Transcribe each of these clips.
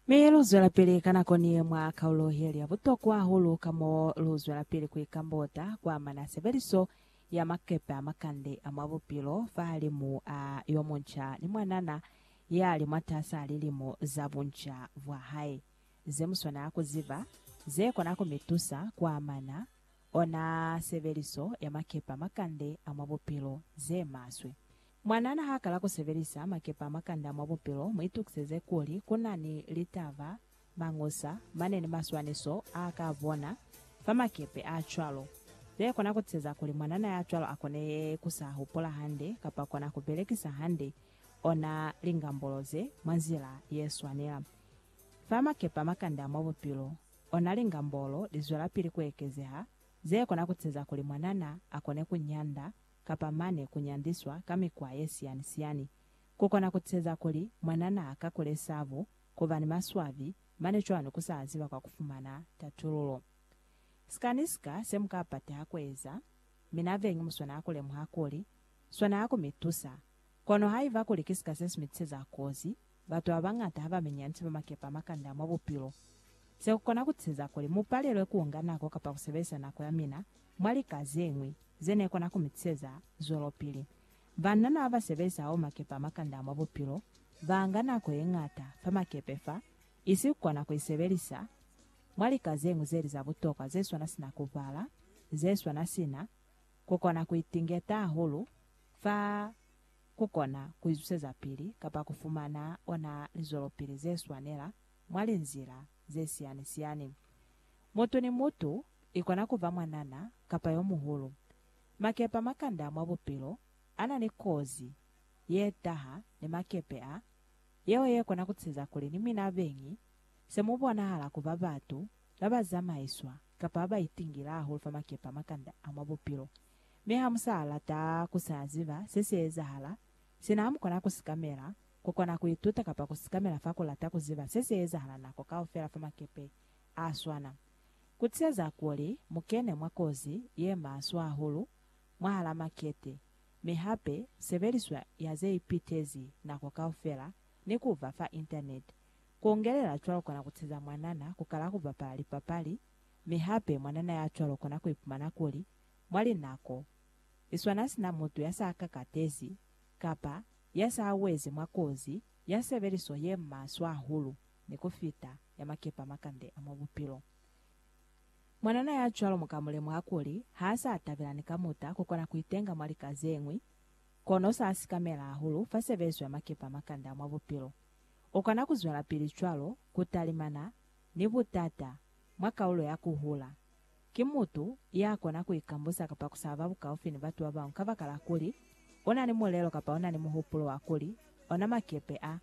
Mi lu zwelapili ka nako ni ye mwa kaulo ye li ya butokwa hahulu ka mo lu zwelapili ku ikambota kwa amana sebeliso ya makepe a makande a mwa bupilo fahalimu a yo munca ni mwanana ya li mwatas'a lilimo za bunca bwa hae. Ze mu swanela ku ziba ze kona ku mi tusa ku amana ona sebeliso ya makepe a makande a mwa bupilo ze maswe Mwanana ha kala ku sebelisa makepe a makanda mwa bupilo, mu itukiseze kuli ku na ni litaba, mañusa, mane ni maswaniso a ka a bona fa makepe a cwalo. Ze kona ku tiseza kuli mwanana ya cwalo a kone ku sa hupula hande kapa kona ku belekisa hande ona lingambulo ze mwa nzila ye swanela. Fa makepe a makanda mwa bupilo, ona lingambulo li zwelapili ku ekezeha, ze kona ku tiseza kuli mwanana a kone ku nyanda kapa mane ku nyandiswa ka mikwa ye siyani-siyani, ku kona ku teza kuli mwana naa kakule sabu, ku ba ni maswabi, mane cwalo ku sa ziba kwa ku fumana tatululo. Sika ni sika se mu ka pateha ku eza, mi na vengi mu swanaa ku lemuha kuli, swanaa ku mi tusa. Kono haiba kuli ki sika se si mi tizeza kozi, Batu babañata habamenyani sina makepe a makanda mwa bupilo. Se kukona kuteza kuli mupalelwe kuunga nako kapa kusebelisa nako yamina mwa lika zeñwi zenekona kumitiseza zwelopili. Banana babasebelisa hahulu makepe a makanda mwa bupilo baanga nako yeñata fa makepe fa, isi kukona kuisebelisa mwa lika zeñwi zeli za butokwa zeswana sina kubala, zeswana sina kukona kuitingeta hahulu fa ku kona ku izwiseza pili kapa ku fumana ona lizwelopili ze swanela mwa linzila ze siyani-siyani. Mutu ni mutu, i kona ku ba mwanana kapa yo muhulu, makepe a makanda mwa bupilo a na ni kozi ye taha ni makepe a, yeo ye kona ku tiseza kuli ni mina beñi se mu bonahala ku ba batu ba ba zamaiswa kapa ba ba itingile hahulu fa makepe a makanda a mwa bupilo. Mi ha mu sa lata ku sa ziba se si ezahala, sina ha mu kona ku sikamela, ku kona ku ituta kapa ku sikamela fa ku lata ku ziba se si ezahala nako kaufela fa makepe a swana. Ku tiseza kuli mu kene mwa kozi ye maswe hahulu mwahala makete, mi hape sebeliswa ya ze ipitezi nako kaufela ni ku ba fa Internet. Ku ungelela cwalo kona ku tiseza mwanana ku kala ku bapala lipapali, mi hape mwanana ya cwalo kona ku ipumana kuli mwa linako li swana sina mutu ya sa kakatezi kapa ya sa wezi mwa kozi ya sebeliso ye maswe hahulu ni ku fita ya makepe a makande a mwa bupilo. Mwanana ya cwalo mu ka mu lemuha kuli ha sa tabela ni kamuta ku kona ku itenga mwa lika ze ñwi, kono sa sikamela hahulu fa sebeliso ya makepe a makande a mwa bupilo. U kona ku zwelapili cwalo ku talimana ni butata mwa kaulo ya ku hula. Ki mutu ya kona ku ikambusa kapa ku sa ba bukaufi ni batu ba bañwi kabakala kuli u na ni mulelo kapa u na ni muhupulo wa kuli ona makepe a,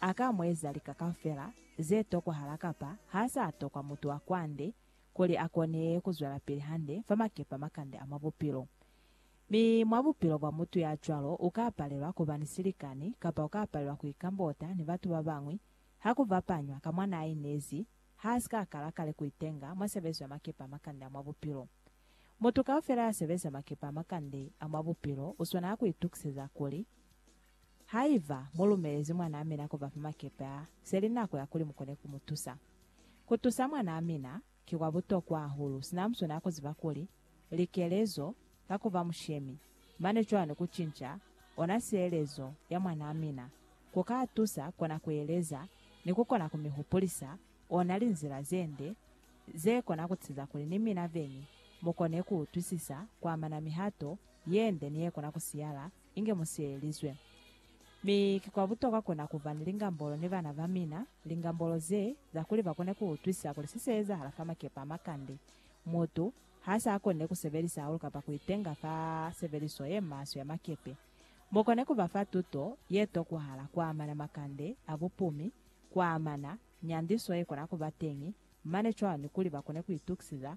a ka mu eza lika kaufela ze tokwahala kapa ha sa tokwa mutu wa kwande kuli a kone ku zwelapili hande fa makepe a makande a mwa bupilo. Mi mwa bupilo bwa mutu ya cwalo u ka palelwa ku ba ni silikani kapa u ka palelwa ku ikambota ni batu ba bañwi ha ku bapanywa ka mwa n'a inezi ha si ka kala kale ku itenga mwa sebezo ya makepe a makande a mwa bupilo. Mutu kaufela ya sebeza makepe a makande a mwa bupilo u swanela ku itukiseza kuli, Haiba mu lumelezi mwanaa mina ku ba fa makepe a, se li nako ya kuli mu kone ku mu tusa. Ku tusa mwanaa mina ki kwa butokwa hahulu, sina mu swanela ku ziba kuli likelezo ka ku ba mushemi, mane cwani ku cinca ona sielezo ya mwanaa mina ku ka tusa kona ku eleza ni ku kona ku mi hupulisa ona linzila ze nde ze kona ku tiza kuli ni mina veñi mu kone ku utwisisa ku amana mihato ye nde ni ye kona ku siyala inge mu sielelizwe. Mi ki kwa butokwa kona ku ba ni lingambolo ni bana ba mina, lingambolo ze za kuli ba kone ku utwisisa kuli se se ezahala fa makepe a makande Mutu ha sa koni ku sebelisa hahulu kapa ku itenga fa sebeliso ye maswe ya makepe, mu koni ku ba fa tuto ye tokwahala kwa amana makande a bupumi, kwa amana nyandiso ye kona ku ba teñi mane cwalo ni kuli ba kone ku itukisiza.